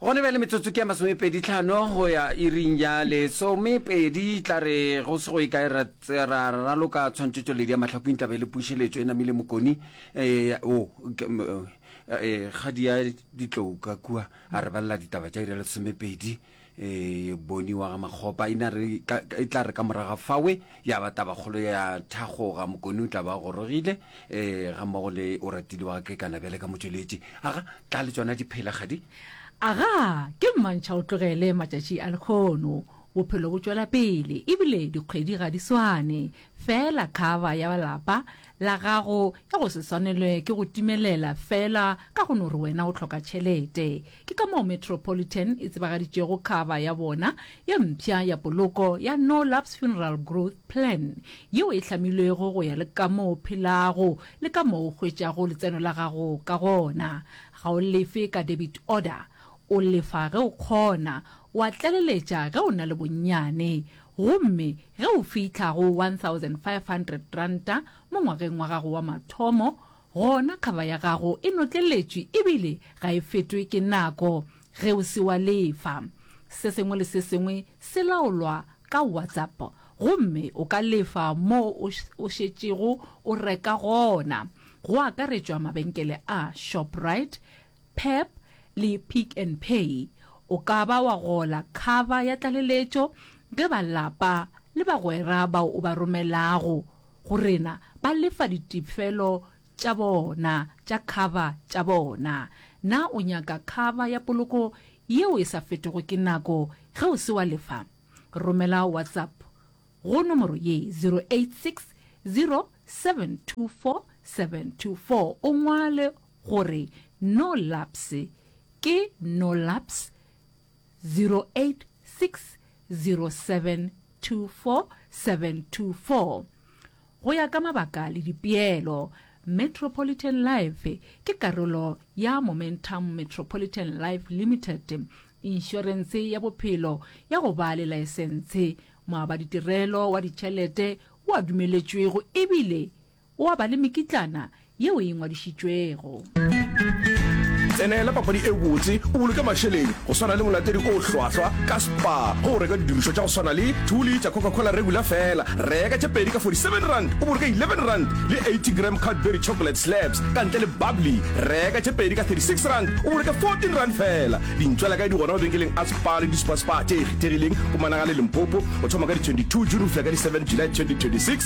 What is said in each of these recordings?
Gona bjale metsotso ke ya masomepedi tlhano go ya iring ya lesomepedi. Tla re go se go e kae ra tse- ra ra raloka tshwantšhetšoledi ya mahlakwing taba e le pušeletšo e namile mokoni eh, o ke- m- eh, eh, kgadi ya ditlouka kua a re balela ditaba tša iri ya lesomepedi eh, boni wa ga makgopa e ne a re ka- ka- e tla re ka moraga fawe ya ba tabakgolo ya thagoga mokone o tla ba gorogile um ga mmogo le o ratile wa ke kana bjale ka motšweletši aga tla le tsona diphela gadi aga ke mmantšha o tlogele matšatši a lekgono bophelo bo tšwela pele ebile dikgwedi ga di swane fela kgaba ya balapa La gago ya go se swanelwe ke go timelela feela ka go no re wena o hloka tšhelete. Ke ka moo Metropolitan e tsebagaditšego khaba ya bona ye mpsha ya poloko ya No Lapse Funeral Growth Plan, yeo e hlamilwego go ya le kamoo o phelago le kamoo o hwetšago letseno la gago ka gona. Ga o lefe ka debit order. O lefa ge o kgona. O a tlaleletša ge o na le bonnyane. Gomme ge o fihla go R1,500 mo ngwageng wa gago wa mathomo, gona kgaba ya gago e notleletšwe ebile ga e fetwe ke nako ge o se wa lefa. Se sengwe le se sengwe se laolwa ka WhatsApp gomme o ka lefa moo o šetšego o reka gona, go akaretšwa mabenkele a Shoprite, Pep le Pick n Pay, o ka ba wa gola khaba ya tlaleletšo ge ba lapa le bagwera bao o ba romelago go rena ba lefa ditefelo tša bona tša khaba tša bona. Na o nyaka khaba ya poloko yeo e sa fetego ke nako ge o se wa lefa? Romela WhatsApp go nomoro ye, 0860 724 724, o ngwale gore no laps ke no laps 0860724724 go ya ka mabaka le dipeelo metropolitan life ke karolo ya momentum metropolitan life limited inšorense ya bophelo ya go ba le laesentshe moabaditirelo wa ditšhelete o a dumeletšwego ebile O a ba le mekitlana yeo e ngwadišitšwego. Tsenela papadi e botse o boloke mašeleng go swana le molatedi o hlwahlwa ka Spar go reka didirišwa tša go swana le two litša Coca-Cola regular fela. Reka tše pedi ka 47 rand o boloke 11 rand le 80 gram Cadbury chocolate slabs ka ntle le bubbly. Reka tše pedi ka 36 rand o boloke 14 rand fela. Dintšwela kae di gona mabenkeleng a Spar le di-Spar Spar tše e kgethegileng Pumalanga le Limpopo. O thoma ka di 22 June go fihla ka di 7 July 2026.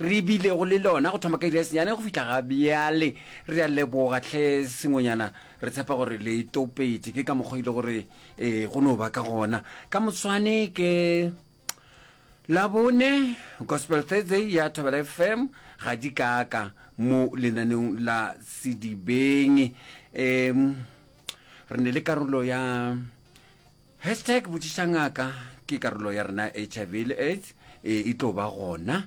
re bilego le lona go thoma ka iri ya senyane go fihla ga bjale. Re a leboga tlhe sengwenyana, re tshepa gore le topetše ke ka mokgwa ile gore e go no ba ka gona ka moswane ke labone gospel thursday ya thobela fm ga di kaka mo lenaneng la sedibeng um re ne le karolo ya Hashtag Botšiša Ngaka ke karolo ya rena ya HIV le AIDS e e tlo ba gona.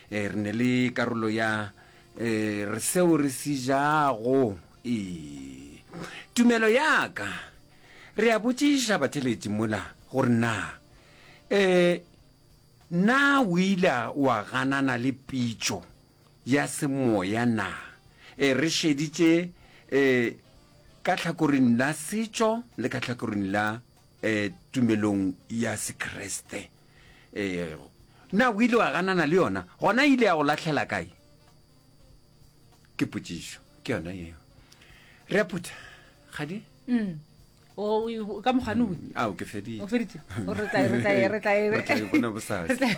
E, re ne le karolo ya e, re seo re se jago. E, tumelo ya ka. Re a botšiša batheletši mola gore na e, na o ile wa ganana le pitšo ya semoya na? Ee, re šeditše e, ka tlhakoring la setšo le ka tlhakoring la e, tumelong ya Sekriste. E, na o ile wa ganana le yona? Gona ile ya go lahlela kae? Ke potšišo, ke yona yeo. Re a phutha, Kgadi? Mm. O- o- ka mokgwane o bue. ao ke fedile o feditse O re tla e- re tla e- re tla e- Re tla e bona bosasa. Re tla e-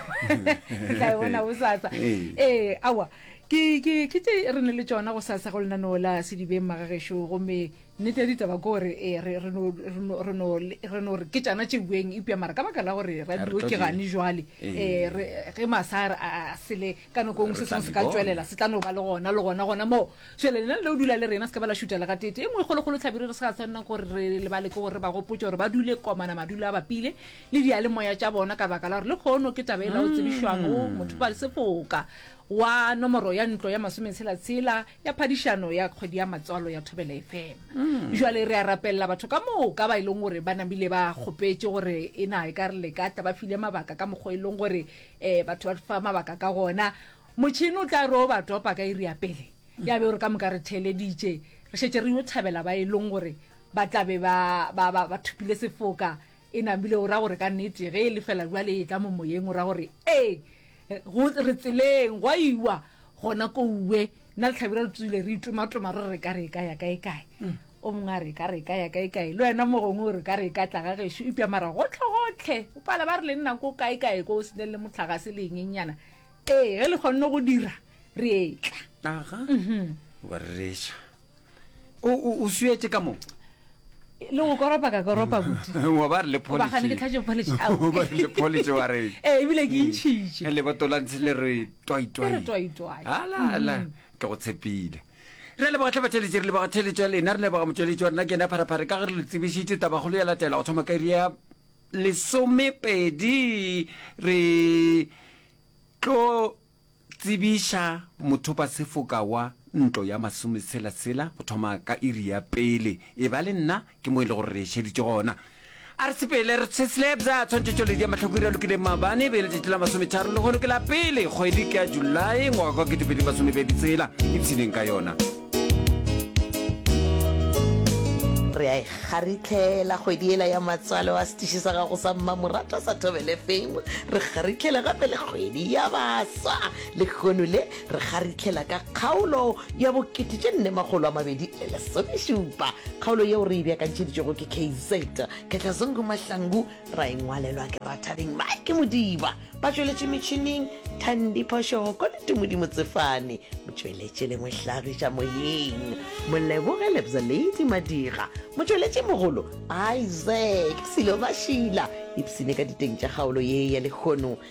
re tla e bona bosasa Ee. ee aowa ke ke ke tse re ne le tsona go sasa go lenaneo la sedibeng magagešo gomme nnete ya ditaba ke gore ee, re re no- re no- re no- re no re ke tšana tše bueng epja mara ka baka la gore radio tlo ke di- gane jwale Ee. ee, re- ge masar a a sele ka nako engwe se sengwe se ka tswelela se tla no ba le gona le gona gona moo šele lena le o dula le rena se ka ba la šuta le gatete e nngwe e kgolokgolo tlhabire re se ga tshwanela gore re lebale ke gore ba gopotse gore ba dule komana madulo a bapile le diyalemoya tša bona ka baka la gore le kgono ke taba e la o tsebišwago mm. motho ba le sefoka wa nomoro ya ntlo ya masometshela-tshela ya phadišano ya kgwedi ya matswalo ya thobela efema mm. jale re a rapelela batho ka moo ka ba e leng gore ba namile ba kgopetse gore e na e ka re le ka tla ba file mabaka ka mokgwa e leng gore Ee, batho ba fa mabaka ka gona. Motšhini o tla re o ba topa ka iri ya pele ya be o re ka moka re theeleditše re šetše re yo thabela ba e leng gore ba tla be ba, ba, ba, ba thopile sefoka e namile o ra gore ka nnete ge e le fela jwale e tla mo moyeng o ra gore ee go re tseleng gwa iwa gona kouwe nna le tlhabira re tswile re itomatoma re re ka re e ka ya kae kae O mongwe a re, Ka re ka ya kaekae? Le wena mo gongwe o re, Ka re ka tla ga gešo. Eupša mara gohlegohle o pala ba re le nna ko kaekae ko o se ne le mohlagase le engenyana. Ee, ge le kgonne go dira, re etla. Aga, wa rereša. O, o, o suetše ka mo. Le go koropa ka koropa kudu. Wa ba re le polish. Ba gane ke tlhatše polish. Wa Au. ba re le polish wa re. Ee, ebile ke itšhitše. Leboto la ntshe le re twai-twai. Le re twai-twai. Hala, hala, ke go tshepile. Re a leboga tlhabatheletši, re leboga theletšo ya lena, re leboga motšweletši wa rena ke yena Pharephare ka ge re le tsebišitše tabakgolo ya latela go thoma ka iri ya lesomepedi re tlo tsebiša mothopa sefoka wa ntlo ya masometshela sela go thoma ka iri ya pele e ba le nna Ke mo e le gore re šeditše gona. A re sepele re se slabs a tshwantšhetšoledi ya mahlakwiri a lokileng maabane e be e letšatši la masometharo le gono ke la pele kgwedi ke ya julae ngwaga kwa ketepedi masomebedi tsela ipshineng ka yona re a e kgaritlhela kgwedi ela ya matswalo a setiši sa gago sa mmamoratwa sa thobele fame re kgaritlhela gape le kgwedi ya baswa lekgono le Re kgarithlela ka kgaolo ya bo kete tše nne makgolo a mabedi le lesomešupa. Kgaolo yeo re e beakantšheditšwego ke KZ. Khetlazungu Mahlangu, ra e ngwalelwa ke Rathabeng Mike Modiba. Batšweletši metšhining, Thandi Phoshoko le Tumudi Motsefane. Motšweletši le mohlagiša moyeng, Moleboge Lebza Lady Madira. Motšweletši mogolo, Isaac Silo Mashila. Ipshine ka diteng tša kgaolo ye ya lehono.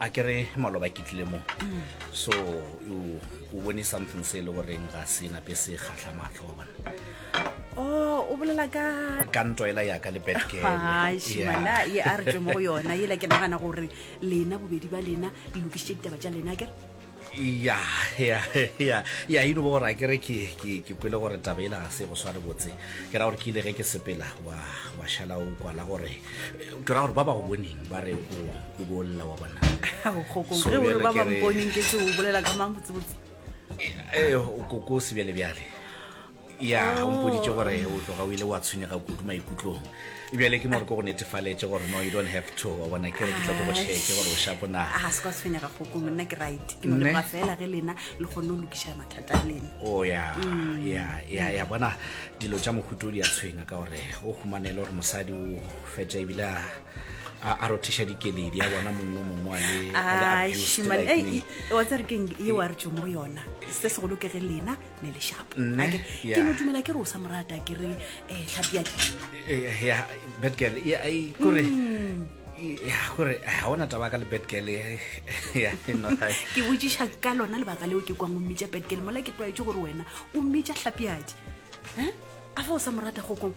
a ke re maloba ke tlile mo so o bone something se e le goreng ga se nape se kgatlha matlho wa bona Oh, o bolela ka ka nto ela yaka le betgela ye a re twe mo go yona yela ke nagana gore lena bobedi ba lena le lokišitše ditaba tša lena kere ya ya ya ya e no bo gore a kere ke ke ke kwele gore taba ela ga se go sware botse ke ra gore ke ile ge ke sepela wa wa shala o kwala gore ke ra gore ba ba go boneng ba re o o bolla wa bona kgokong So, ge o re bjale ba ke re- bamponeng ke se o bolela ka mang botsebotse ee o koko o sebjale bjale ya ga o mpoditse gore o tloga o ile wa tshwenyega kudu maikutlong bjale ke more ko go netefaletše gore no you don't have to wa bona ke re ke tla ko go cheeke gore o shapo na a se kwa tshwenyega goko monna ke right ke no leba fela ge lena le kgone o lokiša mathata a lena o ya ya ya ya bona dilo tša mohuto di a tshwenya ka gore o humanele gore mosadi o fetša ebile a a rothiša dikeledi ya bona mongwe mongwe wa le- a le abused like me. wa tsere keng e wa re tso mo go yona se segolo ke ge lena ne lešapo Nne, Ake, ya. ke no dumela ke re o sa morata ke re um tlhapi yake Eh, ya bad girl ya ai, kore Mm. ya kore ga ona taba ka le bad girl eh, ya no ga- ke botsiša ka lona lebaka leo ke kwang o mmitša petgele mola ke tlwaetse gore wena o mmitša tlhapiadi um a fa o sa morata kgokong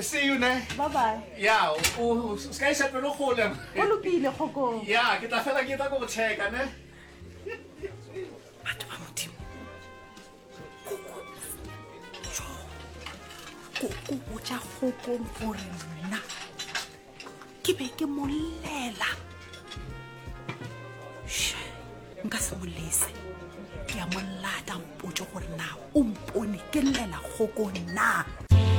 See you ne. Bye bye. Yeah, o ska isa pelo gole. O lokile kgokong. Yeah, ke tla fela ke tla go checka ne. Batho ba modimo. Koko o tša kgokong gore nna ke be ke molela. Sha, nka se molese. Ke a molata mpotse gore na o mpone ke llela kgokong na.